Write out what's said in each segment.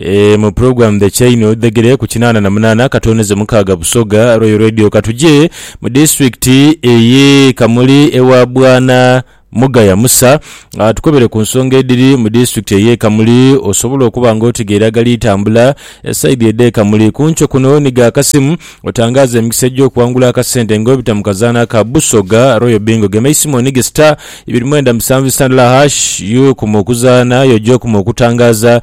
Eeh mu program the chain odhegere ku kinaana na munaana katonezo mukaaga Busoga Royal Radio katuje mu district eye Kamuli ewa bwana Mugaya Musa atukobere ku nsonga edhiri mu district eye Kamuli osobole okuba nga otegeera agali tambula esaidhi edhe Kamuli kunkyo kuno niga akasimu otangaaze emikisa egyokuwangula akasente nga obita mu kazaana aka Busoga Royal Bingo gema eisimu onige star ibiri mwenda musanvu sitandala hash yo kuma okuzaana aye oje okuma okutangaaza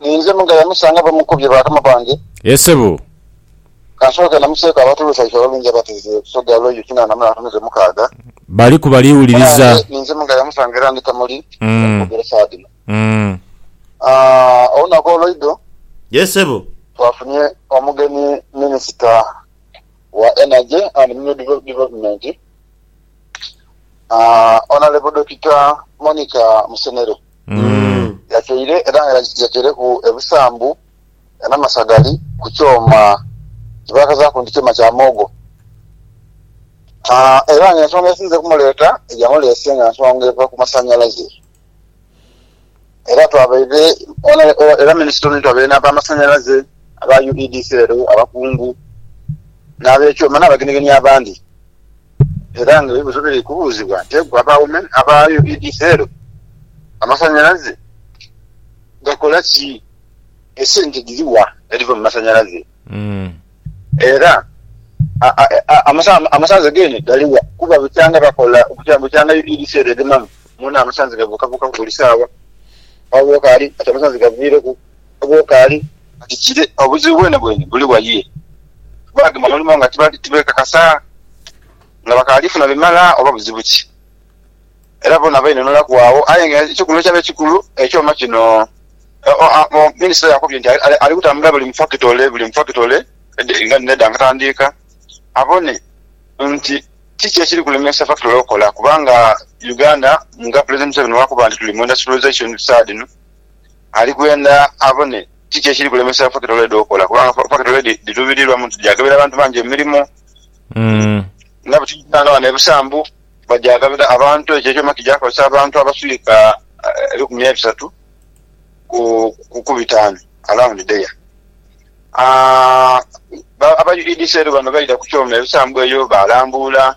Ninze Muga yamusanga bamukubye bakama bange. Ye sebo. Kansooke namuseeko abantu b'ebisayifa abalungi abateze Busoga Arroyo kinaana mu n'atumize mukaaga. Bali ku bali wuliriza. Nange ninze Muga yamusanga era ndi Kamuli okwogera esawa dhino. Olunaku olw'eidho. Ye sebo. Twafunye omugeni Minisita wa Energy and Mineral Development, Honourable Dokita Monica Musenero. Yatyaire era nga yatyaireku ebisambu n'amasagali ku kyoma kye baakazaaku nti kyoma kya muwogo. Era nga ensonga esinze okumuleeta eyamuleese nga nsonga eva ku masanhalaze. Era twabaire, era minisita ono twabaire n'abamasanhalaze, aba UEDCL, abakungu, n'abekyoma n'abagenegeni abandi. Era nga ebibuzo biri kubuuzibwa nti egwe abawume aba UEDCL amasanyalaze gakola ki? Esente dhiri wa edhiva mu masanyalaze? Era amasanze gene gali wa? Kuba bukyanga bakola bukyanga UEDCL egemamu mwona amasanze gabuukabuukaku buli saawa. Wabula okaali kati amasanze gaviireku. Bwokaali kati kire obuzibu bwenebwene buli wa ye? Baagema omulimo nga tibeekakasa nga bakaali funa bimala oba buzibu ki? Era boona bainunulaku agho. Aye nga ekikulu ekyaba ekikulu, ekyoma kino, minisita yakubye nti ali kutambula buli mu fakitole buli mu fakitole nga dhino edha Nkatandiika abone nti kiki ekiri kulemesa fakitole okukola kubanga Uganda nga Pulezidenti Museveni bwakuba nti tuli mu Industrialisation saadhino Ali kwenda abone kiki ekiri kulemesa fakitole edho okola kubanga fakitole dhitubirirwamu nti dhagabira abantu bangi emirimo. Nga bwe tuli kusaanga ghano e Busambu bagyagabira abantu, ekyo ekyoma kija kukozesa abantu abaswika ebikumi ebisatu ku bitaanu around there. Aba UEDC rero bano baidha ku kyoma e Busambu eyo baalambuula.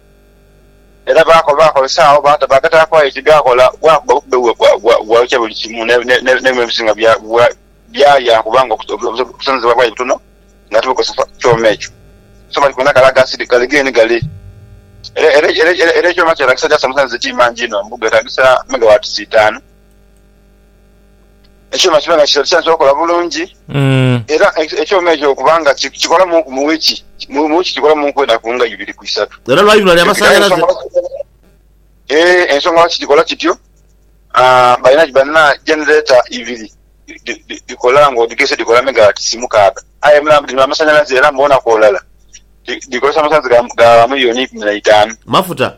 Era baakozesa agho baagataku aye ti gaakola, bwakuba bukube bwayokya buli kimu, n'ebinhonhi ebisinga byalya kubanga obusonosebwa bwali butono nga tibukozesa kyoma ekyo. So bali kwenda kale ghasiiri ghale geeni ghale. Era ekyoma kyetaagisa jaasi omusanhuze ti mangi inho, mbu geetaagisa megawatisi itaanu. ekyuma kibe nga kikola kyansobola okola bulungi mm. era ekyuma ekyo kubanga kikola munku mu wiki mu wiki kikola munku enaku nga ibiri ku isatu era lwaibula lya masanyalaze eh, ensonga lwaki kikola kityo ah, balina banna generator ibiri dikola nga odigese dikola megawatt simukaaga aye mulamu dino amasanyalaze era mbona kwolala dikozesa amasanyalaze ga miliyoni ikumi na itaanu mafuta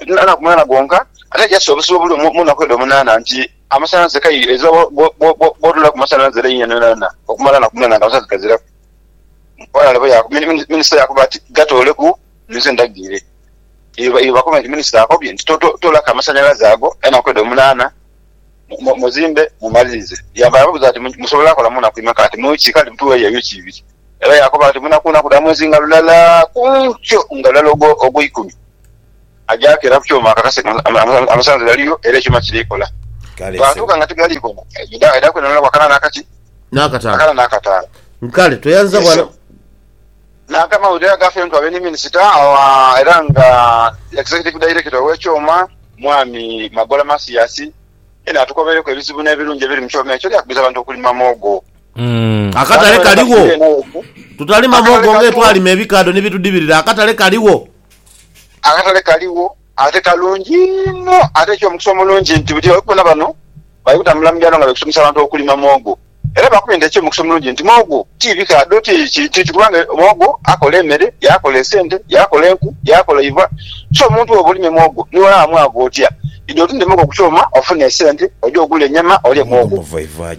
olunaku mulala gwonka, ate yassa obusibo buli omu mu naku edho munaana, nti amasanhalaze kaire ezira bw'otunulaku masanhalaze laini yonayona okumala naku munaana nga amasanhalaze gaziraku. Ghale minisita yaakoba ati, Gatooleku nze ndagirire. Eyo bakobe nti minisita akobye nti toolaku amasanhalaze ago enaku edho munaana. Muzimbe mumalirize. Yaava yababuuza ati, Musobola kola mu naku imeka? Ati, Mu ki? Kale mutuweeyo ebicu ibiri. Era yaakoba ati, Mu naku naku dha mwezi nga lulala ku nkyo nga lulala ogw'eikumi. Aja akeera ku kyoma akakase nga amasanhalaze galiyo era ekyoma kiri kola. Bwatuuka nga tigali kola, aidha kwenoneraku akana n'akaki? Akana n'akataano. Kale toyanza bwana. Nanka amawulire agafentu abe ni minisita era nga Executive Director ow'ekyoma, Mwami Magola Mathias, yena atukobereku ebizibu n'ebirungi ebiri mu kyoma ekyo byakubiriza abantu okulima muwogo. Akatale kaligho, tutalima muwogo ng'etwalima ebikaadho ni bitudhibirira. Akatale kaligho. Akatale kaligho. Ate kalungi inho ate kyo mukisa omulungi nti buli omu bona bano bali kutambula mu byalo nga bali kusomesa abantu okulima muwogo. Era bakubye nti ekyo mukisa omulungi nti muwogo ti bika dho ti kintu ki kubanga muwogo akola emere, yakola esente, yakola enku, yakola eiva. So omuntu bwoba olimye muwogo ni wala wamu agho otya idi otunde muwogo ku kyoma ofune esente oje ogule enyama olye muwogo.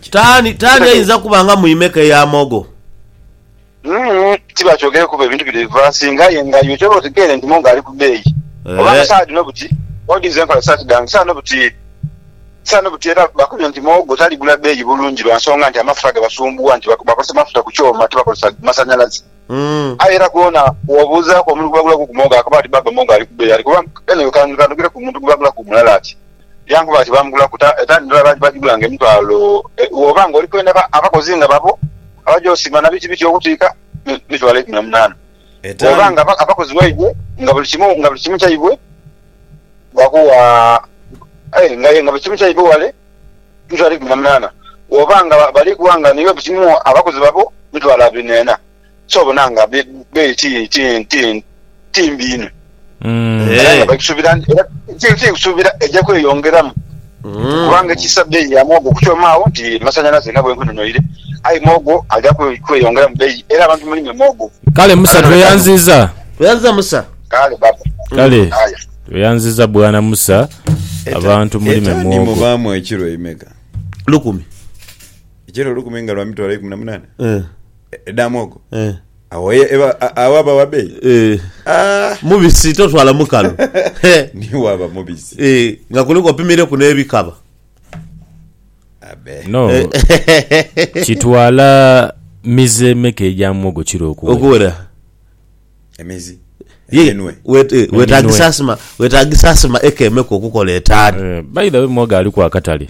Taani taani ayinza kuba nga mwime ke ya muwogo. Umm tibakyogere kuba ebintu bino bivasinga aye nga iwe kyoba otegeire nti Mongo ali ku beeyi oba nga saha dhino buti odinze enkola dhi sati dhange saha dhino buti era bakumye nti muwogo taligula beeyi bulungi lwa nsonga nti amafuta gabasumbuwa nti bakozesa mafuta ku kyoma tibakozesa masanyalaze aye era gwona bwobuuzaaku omuntu gwe bagulaku ku muwogo akaba ati baaba Mongo ali ku beeyi ali kuba kano kantu kanogere ku muntu gwe bagulaku mulala ati Yankuba ati, Baamugula ku etaani ndala baagigula ng'emitwalo e. Bw'oba ng'oli kwenda abakozi nga babo abaja osima na biki biki okutiika mitwalo eikumi na munaana. Bw'oba nga abakozi baibwe nga buli kimu nga buli kimu kyaibwe bakuwa aye nga aye nga buli kimu kyaibwe wale mitwalo eikumi na munaana. Bw'oba nga bali kuwa nga niiwe buli kimu abakozi babo mitwalo abiri n'ena. kyobona nga beeyi ti mbi inho era nga bagisubira eja kweyongeramu kubanga ekisa beeyi ya muwogo okukyoma agho nti masanhalaze nga bwenkunonoire aye muwogo aja kweyongeramu beeyi era abantu mulime muwogo. Kale musa tweyanziza. Tweyanziza musa. Kale baba. Kale tweyanziza bwana musa abantu mulime muwogo. Etani mubaamu ekiro imeka? Lukumi. Ekiro lukumi nga lwa mitwalo eikumi na munaana? Eeh. Edha mwogo Eh. awo ye eba a- awo aba wa beeyi Eh. Ah, Mubisi totwala mukalu. Eh. niwo aba mubisi Eh, nga kuliku opimireku n'ebikaba. abe No. Kitwala mize emeka egya muwogo kiro okuwera? Okuwera. emizi Ye, eminwe wet- eh, wetagisa asima, wetagisa asima eka emeka okukola etaano. Eh, By the way muwogo aliku akatale.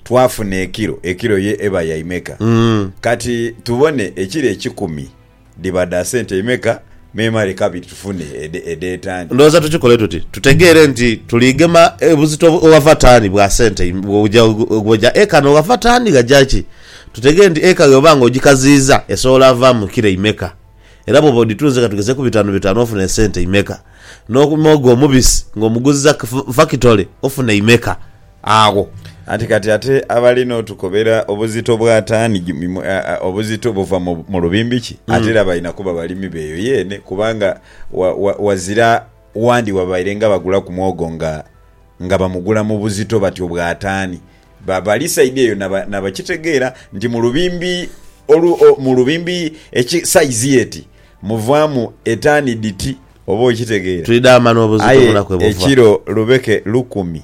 Twafuna ekiro, ekiro ye eba ya imeka? Kati tubone ekiro ekikumi dhiba dha sente imeka, memale kabiri tufune edh'etaani. Ndhowooza tukikole tuti, tutegeere nti tuli gema buzito ghava taani bwa sente bw'oja eka n'oghava taani ghaja ki. Tutegeere nti eka bw'oba nga ogikaziiza esobola vaamu kiro imeka. Era bw'oba odhitunze ka tugezeeku bitaanu bitaanu ofuna esente imeka. N'omuogo omubisi ng'omuguziza ku fakitole ofuna imeka. agho. Anti kati ate abali n'otukobera obuzito bwa taani obuzito buva mu lubimbi ki? Ate era balina kuba balimi b'eyo yeene, kubanga wazira wandi wabaire nga bagulaku mwogo nga bamugula mu buzito batyo bwa taani. Bali saidi eyo na bakitegeera nti mu lubimbi mu lubimbi saizi y'eti muvaamu etaani dhiti, oba okitegeera, aye ekiro lubeke lukumi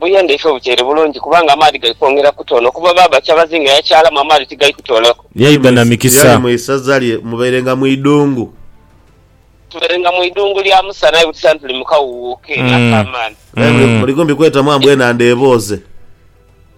Buyendheike obuteere bulungi kubanga amaadhi gali kwongera kutoona kuba baaba kyabazinga yakyalamu amaadhi tigali kutoolaku. Yaidha na mikisa. Yali mu isaza lye mubairenga mu idhungu. Tubairenga mu idhungu lya musana aye buti sani tuli mu kawuuwo keene ak'amaani. Aye muligombi kwetamu ambwa enhandha ebooze.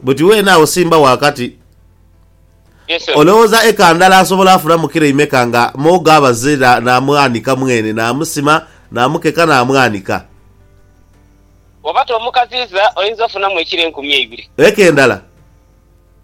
Buti weene agho simba wakati. Olowooza eka ndala asobola afunamu kilo imeka nga moogo abaze naamwanika mweene, naamusima, naamukeka naamwanika? Eka endala.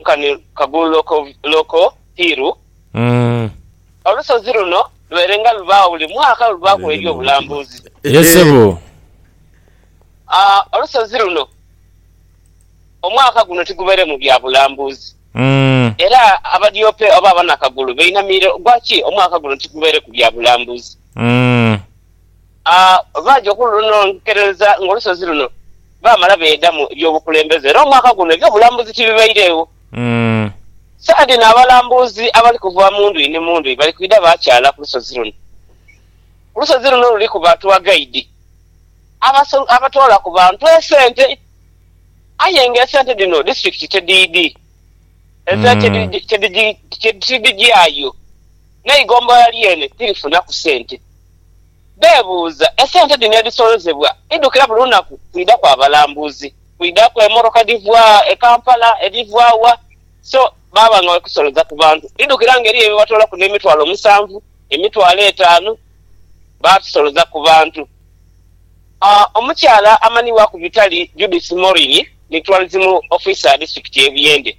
nkani Kagulu-Loko-Loko Hill. Olusozi luno lubeerenga lubaagho buli mwaka olubaaku eby'obulambuzi. Olusozi luno omwaka guno tigubeeremu bya bulambuzi era Abadyope oba Abanakagulu bainamiire ogwa ki omwaka guno tigubeereku bya bulambuzi. A Baaja okulunonkerereza ng'olusozi luno baamala beegamu eby'obukulembeze era omwaka guno eby'obulambuzi tibibairegho. Saha dhino abalambuzi abali kuva mu ndhuyi ni mu ndhuyi bali kwidha baakyala ku lusozi luno. Ku lusozi luno luliku ba tour guide abatoola ku bantu esente aye ng'esente dhino disitulikiti tedhidhi, ezira tidhigyayo. n'eigombolola lyene tirifunaku sente. Beebuuza, esente dhino edhisolozebwa idhukira buli lunaku kwidha kwa balambuzi? Kwidhaku emmotoka edhiva e Kampala, edhiva wa? So baaba nga bali kusoloza ku bantu. Dhidhukira nga eriyo ebibatoolaku n'emitwalo musanvu, emitwalo etaanu, baadhisoloza ku bantu. Omukyala amanhibwaku Vitaly Judith Morin ni Tourism Officer Disitulikiti y'e Buyende.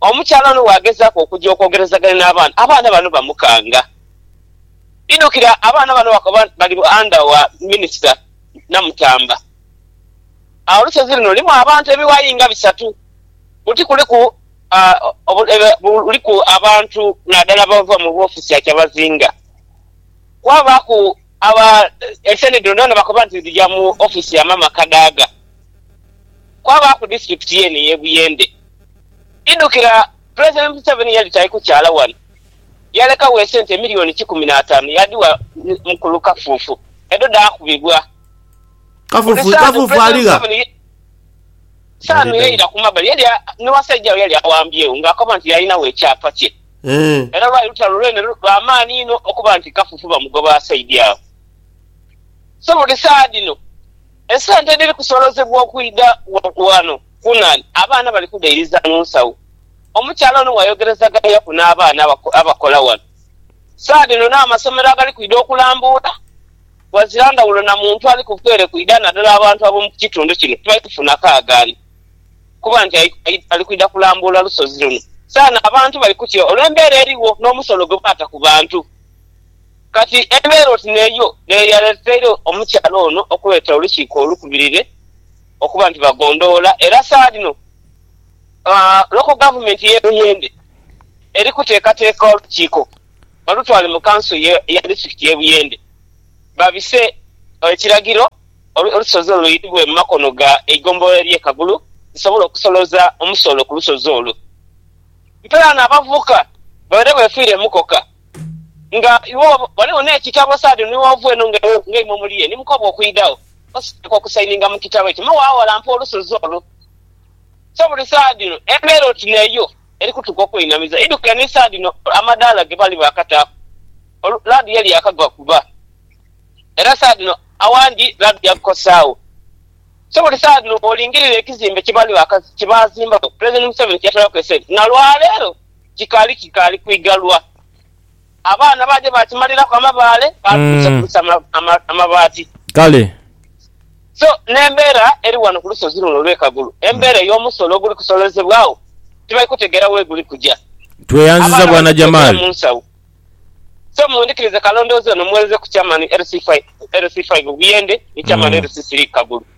Omukyala ono bw'agezaaku okuja okwogerezaganya n'abaana, abaana bano bamukanga. Idhukira abaana bano baakoba nti bali anda wa minisita Namutamba. Agho lusozi luno lulimu abantu ebiwayi nga bisatu. Buti kuliku buliku abantu naadala abava mu woofisi ya Kyabazinga. Kwabaaku aba enseenene dhino dhoona bakoba nti dhija mu ofiisi ya maama Kadaga. Kwabaaku disitulikiti yeene ey'e Buyende. Idhukira, Pulezidenti Museveni yali tali kukyaala ghano, yalekagho esente milioni kikumi n'ataanu yaadhigha mukulu Kafuufu, edho dhaakubibwa. Buli saanu Pulezidenti Museveni saanu yaira ku mabbali yali ni wasaijawe yali awambyegho ng'akoba nti yaalinagho ekyapa kye. Era lwali lutalo lwene lwa maani inho okuba nti Kafuufu bamugoba asaidi agho. So buli saadhino esente edhiri kusoolozebwa okwidha ghano, Kunan, Abaana bali kughairiza mu nsawo. Omukyala ono bwayogerezaganyaku n'abaana abakola wano, Saa dhino n'amasomero agali kwidha okulambuula ghazira ndhawulo na muntu ali ku bweere kwidha nadala abantu ab'omu kitundu kino tibali kufuna kaagaani kuba nti ali kwidha kulambuula lusozi luno. Saano abantu bali kutya olw'embeera erigho n'omusolo gwe baata ku bantu. Kati embeera oti n'eyo n'eyaleeteire omukyala ono okuleeta olukiiko olukubirire Okuba nti bagondhoola era saadhino Local Government y'e Buyende eri kuteekateeka olukiiko balutwale mu Kanso ya District y'e Buyende babise ekiragiro olusozi olwo luitibwe mu makono ga eigombolola ery'e Kagulu lisobole okusoloza omusolo ku lusozi olwo. Mpelana abavubuka babeere befiire mukoka. Nga iwe ghaligho n'ekitabo saadi ni w'ova eno nga imwe muli ye, ni mukobwa okwidhagho, osooka okusayininga mu kitabo ekyo, me waawalampa olusozi olwo. So buli saha dhino embeera oti n'eyo eri kutuka okwenhamiza. Idhukire ni saha dhino amadaala ge baali baakataaku laadi yali yaakagwa kuba era saha dhino awandi laadi yagukosaagho. So buli saha dhino bw'olingirira ekizimbe kye baazimbaku Pulezidenti Museveni kye yatolaku esente, na lwaleero, kikaali kikaali kwigalwa. Abaana baaja baakimaliraku amabaale, baatuusa kusa amabaati. Kale. So n'embeera eri wano ku lusozi luno olw'e Kagulu, embeera ey'omusolo oguli kusolozebwagho tibali kutegeera weguli kuja. Tweyanziza Bwana Jamal. So mundhikirize kalondoozi ono muweereze ku Chairman LC5 Buyende ni Chairman LC3 Kagulu.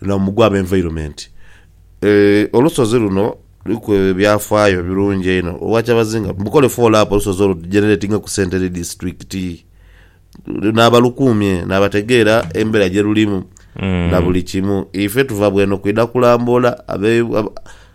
Luno mugwa ab'environment. Olusozi luno luliku ebyafaayo ebirungi einho olwa kyabazinga. Mukole follow up olusozi olwo lugeneratinge ku sente eri disitulikiti n'abalukuumye n'abategeera embeera gye lulimu na buli kimu. Ife tuva bw'eno kwidha kulambula.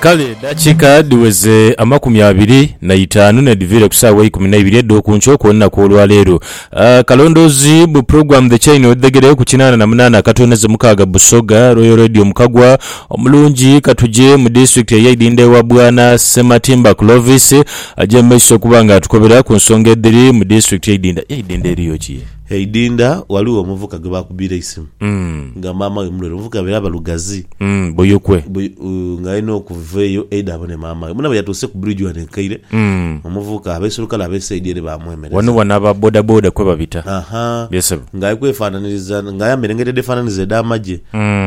Kale edhakiika dhiweze amakumi abiri na itaanu n'edhiviire ku saawa eikumi na ibiri edh'oku nkyo okw'olunaku olwa leero. Akalondoozi bu Program The Chain Wedhegere ku kinaana na munaana akatoonheze mukaaga Busoga Royal Radio mu Kagwa omulungi katuje mu disitulikiti eye Idhindho ewa Bwana Ssematimba Clovis aja mu maiso okuba nga atukobera ku nsonga edhiri mu disitulikiti y'Idhindho. Aye Idhindho eriyo ki? E Idinda ghaligho omuvuka gwe baakubiira eisimu nga maama we mulwaire. Omuvuka yabaire ava Lugazi. Buyukwe. Nga aidha okuva eyo aidhe abone maama we. Mbona bwe yatuuse ku bridge ghano e Kaire, omuvuka abaisulukale ab'e side ere baamwemereza. Ghano ghano aba bodaboda kwe babita. Yee sebo. Nga ali kwefaananiriza, nga ayambaire engaito edheefaananiriza edh'amagye.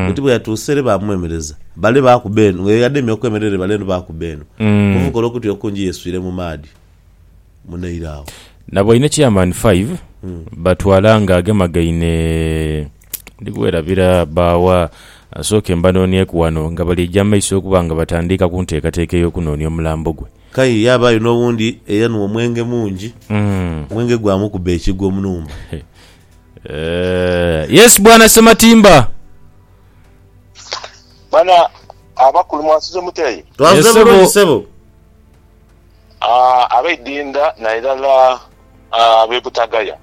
Bati bwe yatuuse ere baamwemereza. Bale baakuba eno. Nga ye ademye okwemerera ere bale eno baakuba eno. Omuvuka olw'okutya okungi yeeswire mu maadhi. munaire agho. Nabo inho Chairman Five batwala nga agemagaine ndi kwerabira ba wa? Nsooke mbanonieku ghano nga bali eja maiso okuba nga batandiika ku nteekateeka ey'okunoonia omulambo gwe. Kaye yaabaayo n'owundi eyanhwa omwenge mungi, omwenge gwamukuba ekigwo omunhumba. Eeh, yes Bwana Ssematimba. Bwana abakulu mwasuze mutya yi? Twasuze bulungi ssebo. abaidinda nairala ab'e Butagaya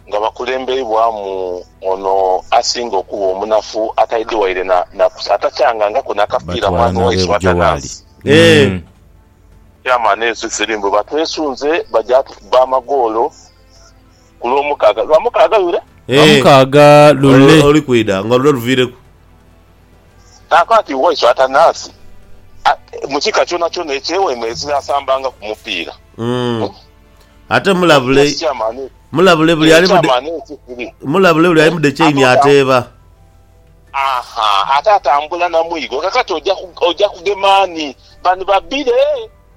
nga bakulembeibwamu ono asinga okuba omunafu ataidhi waire na kusa atakyangangako na kapiira mwana waisu Atanansi. Chairman ensi dhiri mbu batwesunze baja tukuba amagoolo ku Lwomukaaga. Lwamukaaga lule? Lwamukaaga lule. Olulikwidha nga lule luviireku. Kaakati Waisu Atanasi, mu kika kyonakyona eky'eweema ezira asambanga ku mupiira. Ate mulabule, mulabule buli ali mude, mulabule buli ali mude chaini ateeba. Aha, ate atambula na mwigo. Kakati oja kugema ani? Bani babire?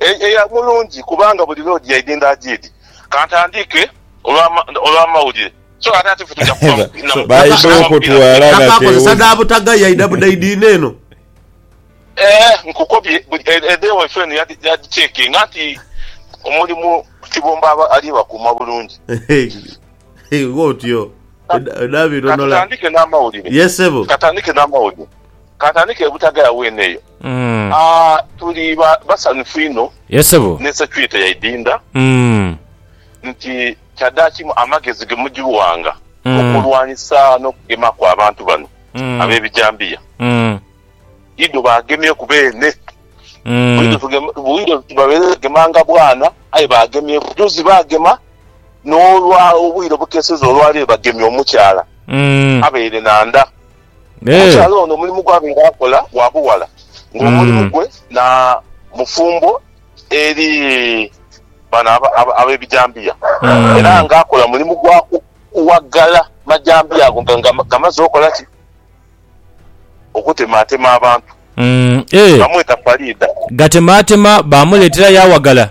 Eya mulungi kubanga buli lw'odhi yaidhindha ajiidhi. Kantandiike olw'amawulire so ate ati ffe tuja kuva mu kibiina mu Baidha okutwala na teewuza. Ee, nkukobye edha ewaife eno yadhicekinga nti omulimu Kibumba aba ali bakuuma bulungi. Kantandiike n'amawulire. Kantandike e Butagaya weene eyo. Aah tuli ba basanhufu inho Yes ssebo. ne security yaidinda nti kyadaakimu amagezi ge mujiwanga okulwanisa n'okugemaku abantu bano ab'ebijambiya. Idho baagemyeku beene. Bwidho tugema, bwidho babaire bagemanga bwana aye baagemyeku. Juzi baagema n'olwa obwire obukeseza olwa leero bagemye omukyala abaire na nda. Omukyala ono omulimu gwabeera akola gwa bughala ng'omulimu gwe na mufumbo eri bano ab'ebijambiya era nga akola mulimu gwa kuwagala majambiya ago nga gamaze okola ki? Okutemaatema abantu. Bamweta Faridah. Gatemaatema baamuleetera yaawagala.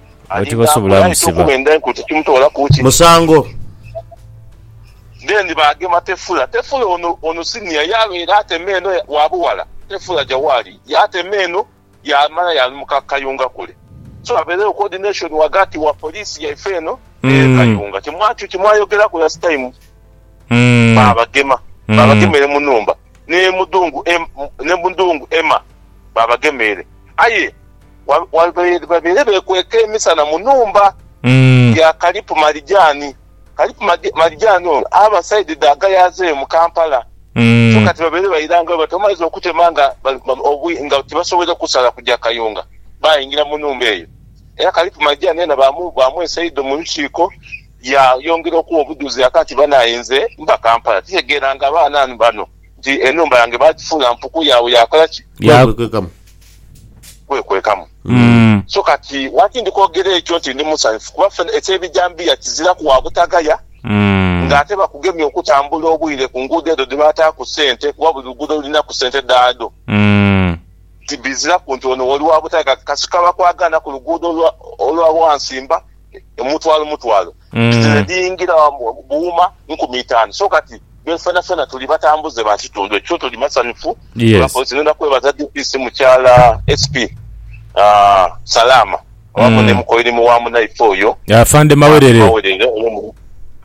Abo tibasobola musiba. Musango. Then baagema Tefula. Tefula ono, ono senior, yaabeera atema eno wa bughala. Tefula aja waali, yaatema eno, yaamala yaalumuka Kayunga kule. So abeerewo coordination ghagati wa police yaife eno ne Kayunga. Kye mwayogeraku last time, baabagema. Baabagemeire mu nhumba. N'e Mudhungu, n'e Mudhungu Emma, baabagema ere. Aye. babeere bekweka emisana mu nhumba ya Kalipu Marijani. Kalipu Marijani ono aba saidi dha Gayaza eyo mu Kampala, so kati babeere bairangayo bati bamaliza okutema nga tibasobwoire kusala kuja Kayunga, baingira mu nhumba eyo. Era Kalipu Marijani yena baamwesa eidho mu lukiiko yaayongera okuwa obudhuzi aka nti, Banaye nze mba Kampala, titegeeranga abaana bano. nti enhumba yange baagifuula mpuku yaabwe ya kola ki? Ya kwekwekamu. Kwekwekamu. Mm. So kati lwaki ndi kwogera ekyo nti ndi musanhufu? Kuba ffe eky'ebijambiya kiziraku wa butagaya, Mm. ng'ate bakugemya okutambula obwire ku nguudo edho dhe bataaku ssente kuba buli luguudo lulinaku ssente dhaadho. Mm. Nti biziraku nti ono oli wa butagaya kasita kaba kwagaana ku luguudo olwa olwa Wansimba, mutwalo mutwalo. Bizira dhiingira buuma nkumi itaanu. So kati be fenafena tuli batambuze ba kitundu ekyo, tuli masanhufu olwa Yes. poliisi. Ngenda kwebaza DPC Mukyala SP Salaama awamu ni mukoirimi wa munaife oyo Afande Mawerere. Mawerere olw'omulimu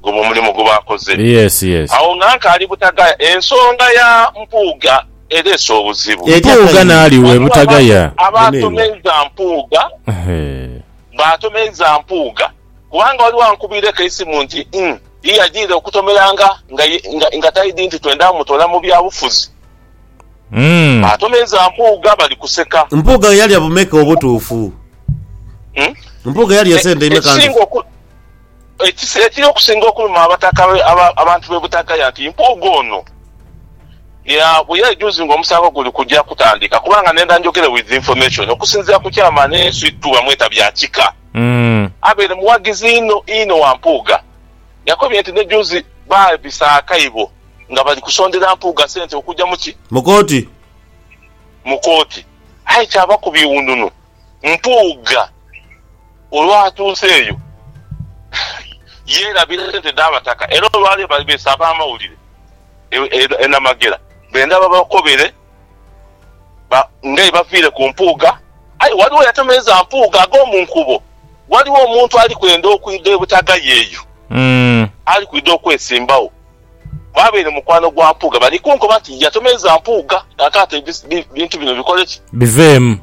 gwe omulimu gwe bakoze. Yes, yes. Agho nga nkaali Butagaya, ensonga ya Mpuuga ereese obuzibu. Etya Mpuuga Kayiira? n'ali we Ghaligho Butagaya. abantu abaatomenza Mpuuga, Ehe. baatomeza Mpuuga. Kubanga oli wankubiireku eisimu nti Ing. Ye yajiire okutomeranga nga taidhi nti twendha mutoola mu byabufuzi. Atomeza Mpuuga bali kuseka. Mpuuga yalya bumeka obutuufu? Mpuuga yalya sente imeka ndhuvu? Ekiri okusinga okuluma abataka abantu b'e Butagaya nti Mpuuga ono bweyejuzi nga omusango guli kuja kutandika kubanga nenda njogere with information okusinziira ku Chairman Sweet Two bamweta Byakika. abaire mughagizi inho inho wa Mpuuga yakobye nti ni juuzi baabisa akaibo nga bali kusondera Mpuuga sente okugya mu ki? Mu kooti. Mu kooti. Aye kyaba ku biwununu Mpuuga olwatuuse eyo yeerabira sente dha Bataka era olwaleero bali beese ab'amawulire e Namagera benda babakobere Ba Ngei baviire ku Mpuuga. Aye waliwo eyatemeeza Mpuuga ag'omu nkuubo. Waliwo omuntu ali kwenda okwidha e Butagaya eyo. Ali kwidha okwesimbagho. Bw'abaire mukwano gwa Mpuuga bali kunkoba nti yatemeeza Mpuuga kakati ebintu bino bikole ki? Biveemu.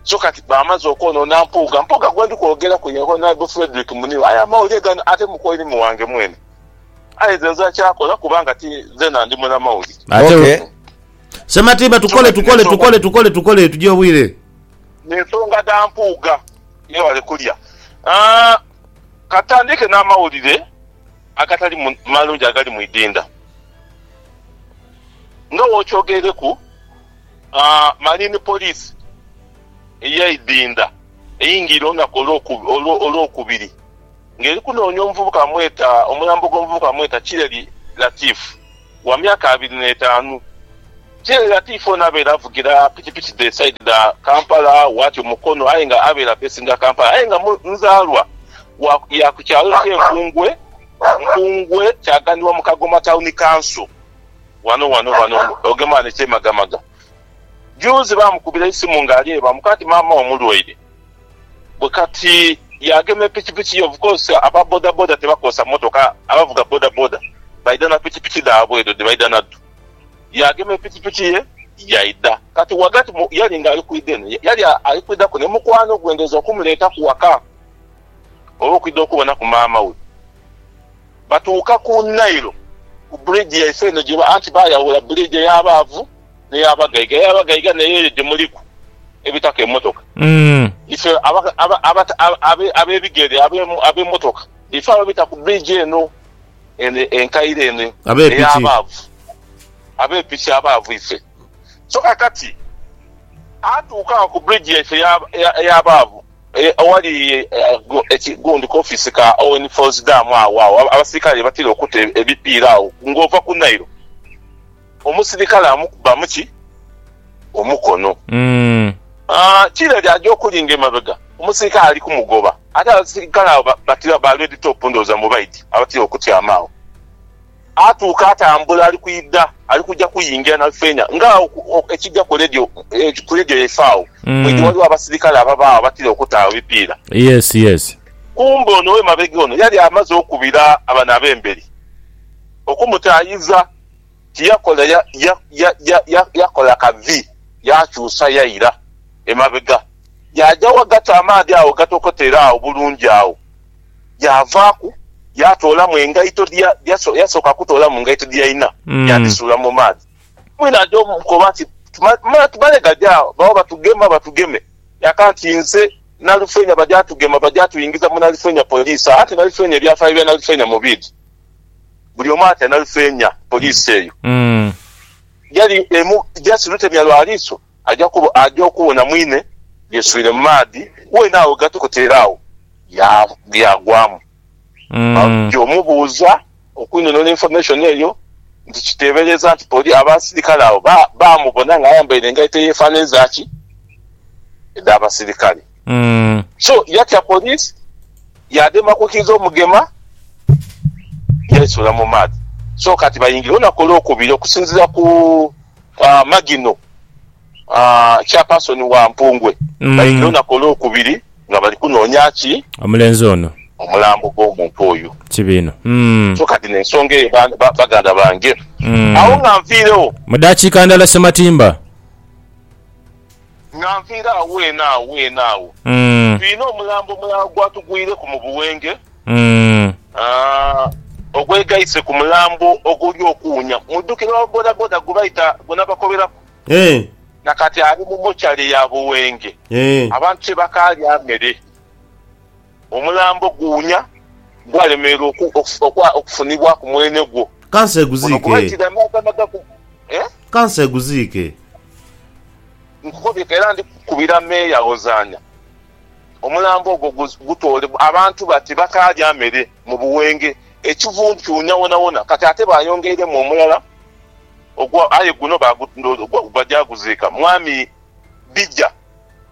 So kati baamaze okwonoona Mpuuga. Mpuuga gwendi kwogeraku ye Honourable Fredrick Muniru. Aye amawulire gano ate mukoirimi wange mwene. Aye nze nze akyakola kubanga ti nzena ndi mulamauli. Ate Okay. we- Sematimba tukole tukole tukole tukole tukole tugye obwire. Ensonga dha Mpuuga. Yebale kulya. Ah, ka tutandiike n'amawulire agatali mu- malungi agali mu idinda. Nga bw'okyogereku, ah, Marine Police ey'eidinda eyingiire olunaku olw'oku- olwo- olw'okubiri. ng'eri kunoonia omuvubuka bamweta omulambo gw'omuvubuka bamweta Kireri Latif wa myaka abiri n'etaanu. Kireri Latif ono abaire avugira pikipiki dhe saidi dha Kampala watyo Mukono aye nga abaire apesinga Kampala aye nga nzaalwa wa ya ku kyalo kye Nkungwe, Nkungwe kyaganibwa mu Kagoma Town Council wano wano wano ogema wano ekyemagamaga. Juuzi baamukubira eisimu ng'ali e Bamuka nti maama we mulwaire. Bwe kati yaagema epikipiki ye. Of course aba bodaboda tibakozesa motoka, abavuga bodaboda baidha na pikipiki dhaabwe edho dhe baidha nadho. Yaagema epikipiki ye yaidha. Kati ghagati mu yali ng'ali kwidha eno, yali ali kwidhaku ni mukwano gwe ndhooza okumuleetaku ghaka oba okwidha okubonaku maama we. Batuuka ku Nile ku bridge yaife eno gye anti baayawula bridge ey'abaavu. neya bagaiga eya bagaiga neyo eyo gyemuliku ebitaka emotoka ife abebigere abemotoka ife ababita ku bridge eno enkaire eno eya abaavu abepiki abaavu ife so kakati atuuka agho ku bridge yaife eya abaavu owali gundi ku office ka Owen falls dam agho agho abasirikale ghebatira okuta ebipiira agho nga ova ku Nile. Omusirikale amukubamu ki? Omukono. Aah kire ere aja okulinga emabega omusirikale ali kumugoba. Ate abasirikale abo batira ba red top ndowooza mwe baidhi abatira okutyama agho. Atuuka atambula ali kwidha ali kuja kuyingira na feena nga agho ekija ku radio ku radio yaife agho mwe dhi waliwo abasirikale ababa agho abatira okuta agho ebipiira. Yes yes. Kumbe ono owemabega ono yali amaze okubira bano abemberi okumutaayiza. Kye yakola ya, ya, ya, ya, ya, yakola ka vi, yaakyusa, yaira emabega, yaaja ghagati amaadhi agho ghatokotera agho bulungi agho. Yaavaaku, yaatoolamu engaito dhe, ya, yaso, yasooka kutoolamu ngaito dhe yalina, yaadhisuula mu maadhi. Mwine aja omukoba nti, Tuma, ma, tumale gaja agho, bagho batugema, batugeme. Yaaka nti, Nze Nalufeenya, bajaatugema, bajaatuingiza mu Nalufeenya Poliisi agho. Anti Nalufeenya, ebyafaayo bya Nalufeenya mu biidhi. buli omu ati analufeenya. Poliisi eyo yali emu just lutemya lwa liiso aja okubona mwine yeswire mu maadhi weene agho gatokota era agho yaagwamu. Baja omubuuza okwinhonhora information eyo nti kiteebereeza nti poli abasirikale abo baamubona ng'ayambaire engaito eyeefaananizaki edh'abasirikale. Mm. So yatya police yadema kukiiza omugema yaisuula mu maadhi so kati bayingire olunaku olwokubiri okusinzira ku ah, Magino ah, chairperson wa Mpungwe Mm. bayingire olunaku olwokubiri nga bali kunoonya ki Omulenzi ono. omulambo gw'omuntu oyo Kibi inho. Mm. so kati nensonga eyo ba- ba- baganda bange Mm. awo nga nviirewo Mu dakiika ndala Ssematimba. Nga nviire agho eno agho eno agho, twine omulambo omulala gwatugwireku mu buwenge, ogwegaise ku mulambo oguli okuwunya. Mudhukire owa bodaboda gwe baita gwe nabakoberaku? Na kati ali mu mochari ya buwenge, abantu tibakaalya mere. Omulambo guwunya, gwalemererwa okufunibwa ku mwene gwo. Ka nse guziike. Ka nse guziike. Nkukobye era ndi kukubira meeya Ozaana, omulambo ogwo gutoole. Abantu bati bakaalya mere mu buwenge, ekivundu kiwunya wonawona. Kati ate bayongeiremu omulala ogwo, aye guno baja kuguziika. Mwami Bija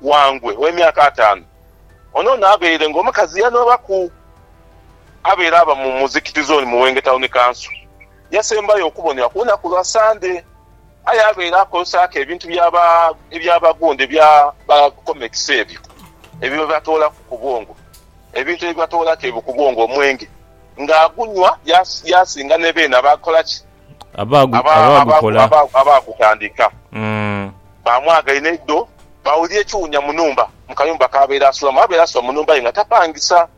Wangwe, ow'emyaka ataanu. Ono ono abeire nga omukazi yanoobaku abeera aba mu muzikiti zooni mu Wenge Tawuni Kanso. Yasembayo okubonebwa ku lunaku lwa Sande aye abeera akozesaaku ebintu eby'abagonde bya ba Comets ebyo ebibatoolaku ku bwongo, ebintu ebibatoolaku ebyo ku bwongo, omwenge, ng'agunhwa yaasinga ne beene abakola ki? abaagutandika baamwaga inho eidho baawulira ekiwunya mu nhumba mu kayumba k'abaire asulamu. Abaire asula mu nhumba ye nga tapangisa.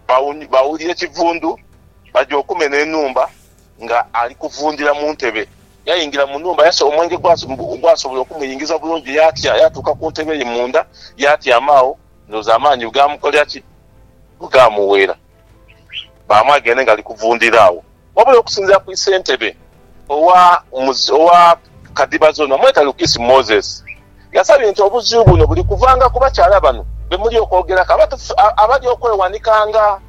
Baawulira ekivundu baja okumenha enhumba nga ali kuvundhira mu ntebe. Yaingira mu nhumba yasegha omwenge ogwasobola okumuyingiza bulungi yaatya yaatuuka ku ntebe ye munda yaatyama agho. Ndhowooza amaani bwegaamukolera ki? Bwegaamuweera. baamwagende nga ali kuvundhira agho. Wabula okusinziira ku isentebe owa owa Kadiba Zone, Mweta Lukisi Moses, yasabye nti obuzibu buno buli kuvanga ku bakyala bano be muli okwogeraku abali okwewanika nga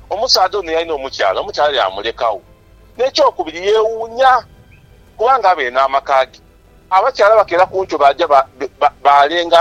omusaadha ono yalina omukyala, omukyala yaamulekagho. N'ekyokubiri yeewuunya kubanga abaire n'amaka ge, abakyala bakeera ku nkyo baaja baalenga